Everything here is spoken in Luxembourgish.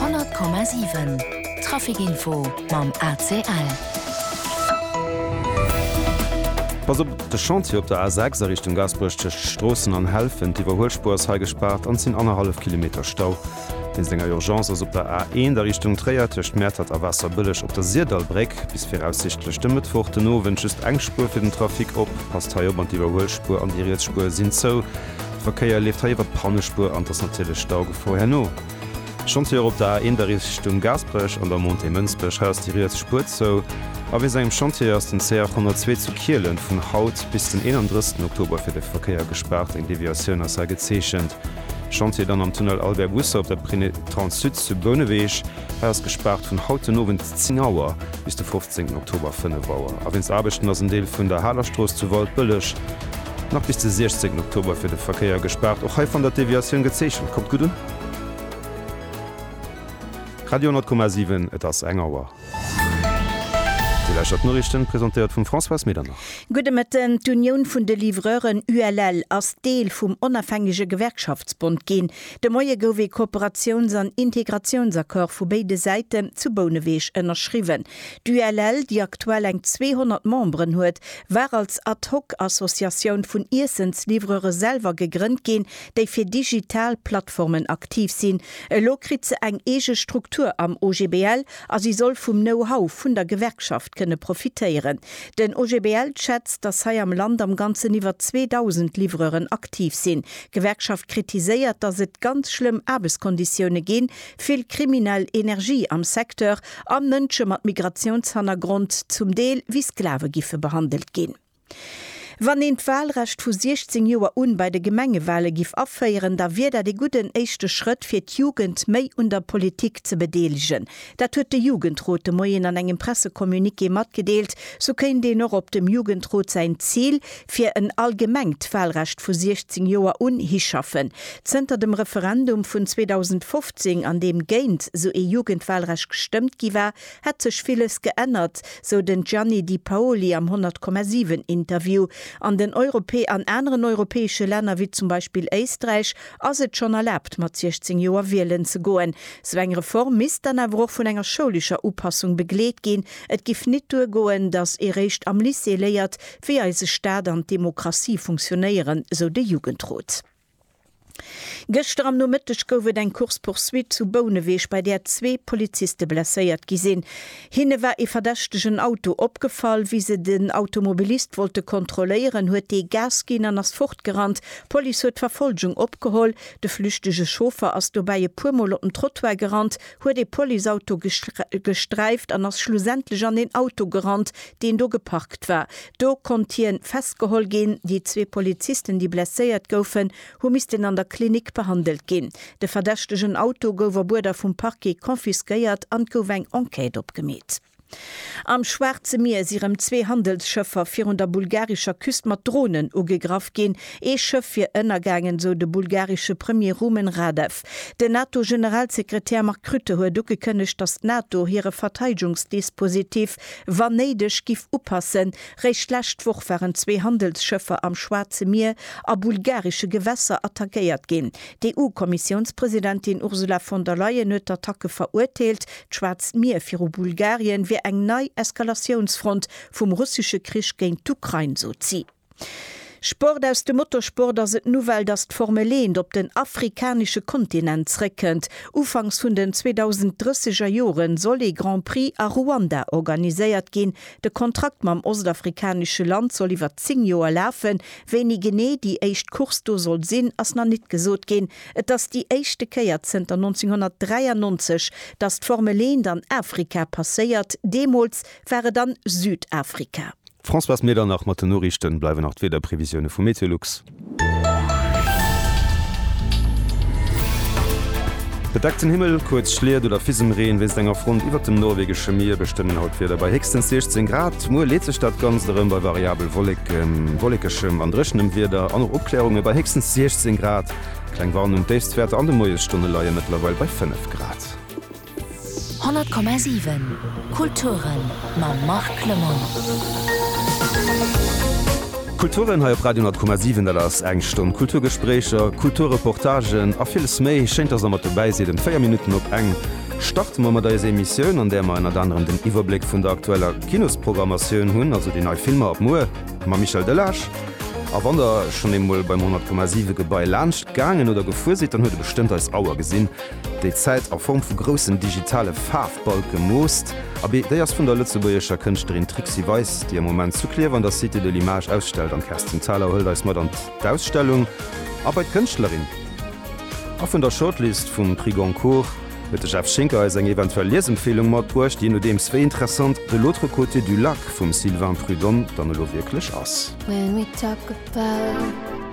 100,7 Trafic Info mam ACL. Pass op, De Chantier op der A6 a Richtung Gaasperech tëscht Stroossen an Helfent, Iwwerhuelspuer ass hei gespaart an et sinn annerhallef Kilometer Stau. Wéinst enger Urgence ass op der A1 a Richtung Tréier tëscht Mäertert a Waasserbëlleg op der Sirdallbréck bis viraussichtlech de Mëttwoch den Owend just eng Spuer fir den Trafic op. Passt hei op, an d'Iwwerhuelspuer an déi riets Spuer sinn zou. De Verkéier leeft hei iwwer d'Pannespuer an et ass natierlech Staugefor herno. Schonns hir op der A1 da Richtung Gaasperech an der Montée Mënsbech. Hei ass déi riets Spuer zou. A wéi sengem Chantier ass den CR 102 zu Kielen vun haut bis den 31 Oktober fir de Verkéier gespaart. Eng Deviatioun ass hei gezeechent. Chantier dann am Tunnel Albert Busse op der Prinetranssud zu Bouneweg. Hei ass gespaart vun haut den Owend 10 Auer bis de 15 Oktober 5 Auer. A wéinst Aarbechten ass en Deel vun der Halerstrooss zu Waldbëlleg nach bis de 16 Oktober fir de Verkéier gespaart. Och hei fannt der d'Deviatioun gezeechent. Kommt gutt un! Radio 10,7, et ass eng Auer. Dir lauschtert d'Noriichten, presentéiert vum Françoise Medernach. Gudde Mëtten. D'Unioun vun de Livreuren, ULL, ass Deel vum Onafhängege Gewerkschaftsbond ginn. De Moie gouf ee Kooperatiouns an Integratiounsaccord vu béide Säiten zu Bouneweg ënnerschriwwen. D'ULL, déi aktuell eng 200 Memberen huet, war als Ad-hoc-Associatioun vun Iessensliwwrere selwer gegrënnt ginn, déi fir digital Plattformen aktiv sinn. Elo kritt se eng eege Struktur am OGBL a si soll vum Know-how vun der Gewerkschaft kënne profitéieren. Den OGBL schätzt, datt hei am Land am Ganzen iwwer 2.000 Liwwreuren aktiv sinn. D'Gewerkschaft kritiséiert, datt et ganz schlëmm Aarbechtskonditioune ginn, vill kriminell Energie am Secteur an Mënsche mat Migratiounshannergrond zum Deel wéi Sklave giffe behandelt ginn. Wann een d'Walrecht vu 16 Joer un bei de Gemengewale giff aféieren, da wier dat ee gudden éischte Schrëtt fir d'Jugend méi un der Politik ze bedeelegen, Dat huet de Jugendrot de Moien an engem Pressecommuniqué matgedeelt. Sou kéint een och op dem Jugendrot säin Zil fir en allgemengt Wahlrecht vu 16 Joer un hischaffen. Zënter dem Referendum vun 2015, an deem géint sou ee Jugendwahlrecht gestëmmt gi war, hätt sech villes geännert, sou den Gianni Di Paoli am 100,7 Interview. An den Europä an aneren europäesche Länner, wéi zum Beispill Éisträich, Ass et schonn erlaabt, mat 16 Joer wielen ze goen? Sou eng Reform misst dann awer och vun enger schoulescher Upassung begleet ginn. Et giff nit duer goen, datt ee réischt am Lycée léiert, wéi eise Staat an d'Demokratie funktionéieren, sou de Jugendrot. Gëschter am Nomëtteg gouf et eng Course-poursuite zu Bouneweg, bei där zwee Poliziste blesséiert gi sinn. Hinne war ee verdächtegen Auto opgefall. Wéi se den Automobilist wollte kontrolléieren, huet dee Gas ginn an ass fortgerannt. D'Police huet d'Verfolgung opgeholl. De flüchtege Chauffer ass dobäi e puer Mol op den Trottoir gerannt, huet ee Policeauto gesträift an ass schlussendlech an een Auto gerannt, deen do geparkt war. Do konnt hien festgeholl ginn. Déi zwee Polizisten, déi blesséiert goufen, hu missten an der Klinik behandelt ginn. De verdächtegen Auto gouf op Uerder vum Parquet confisquéiert an et gouf eng Enquête opgemeet. Am Schwaarze Mier si rëm zwee Handelsschëffer virun der bulgarischer Küst mat Dronen ugegraff ginn. Ee Schëff wier ënnergaangen, sou de bulgaresche Premier Rumen Radev. Den NATO-Generalsekretär Mark Rutte huet ugekënnegt, datt d'NATO hire Verteidegungsdispositif, wann néideg, giff upassen, Réischt d'lescht Woch waren zwee Handelsschëffer am Schwaarze Mier a bulgaresche Gewässer attackéiert ginn. D'EU-Kommissiounspresidentin Ursula von der Leyen huet d'Attacke verurteelt. D'Schwaarzt Mier viru Bulgarien wier eng nei Eskalatiounsfront vum russesche Krich géint d'Ukrain, sot si. Sport Aus dem Motorsport ass et d'Nouvelle, datt d'Formel eent op den afrikanesche Kontinent zréckkënnt. Ufanks vun den 2030er Jore soll ee Grand Prix a Ruanda organiséiert ginn, De Kontrakt mam ostafrikanesche Land soll iwwer 10 Joer lafen. Wéini genee déi éischt Course do soll sinn, ass nach nit gesot ginn. Et ass déi éischte Kéier zënter 1993, datt d'Formel 1 an Afrika passéiert. Deemools war et an Südafrika. D'Françoise Medernach mat den Noriichten. Bleiwen nach d'Wiederprevisioune vu Meteolux. Bedeckten Himmel, kuerz Schliet oder Fisemreen wéinst enger Front iwwert dem norwegesche Mier bestëmmen haut d'Wieder bei héchstens 16 Grad. Muer leet sech dat Ganzt erëm bei variabel Wolleken, wollekeschem an dréchenem Wieder an och Opkläerunge bei héchstens 16 Grad. Kleng Warnung, D'Déifstwäerter an de Moiesstonne leie mëttlerweil bei 5 Grad. 100,7 Kulturen mam Marc Clement. Kulturen hei op Radio 10,7 dat ass eng Stonn Kulturgespréicher, Kulturreportagen a villes méi. Schéint dass der mat dobäi sidd em 4 Minutten op eng. Starte mer mat eiser Emissioun an där mer ënnert anerem den Iwwerbléck vun der aktueller Kinosprogrammatioun hunn, also déi nei Filmer ab muer mam Michel Delage. A wann der schonn eemol beim 100,7 Gebai laanscht gaangen oder gefuer sidd, dann huet der bestëmmt eis Auer gesinn déi d'Zäit a Form vu groussen digitale Faarfbalke moosst, a bi, déi ass vun der lëtzebuergescher Kënschtlerin Trixi Weis, déi am Moment zu Klierf an der Cité de l'Image ausstellt. An d'Kerstin Thalau hëlt eis mat an d'Ausstellung a bei d'Kënschtlerin. A vun der Shortlist vum Prix Goncourt huet de Jeff Schinker eis eng eventuell Liesempfeelung matbruecht, jee nodeems wéi interessant De l'autre côté du lac vum Sylvain Prud'homme dann elo wierklech ass.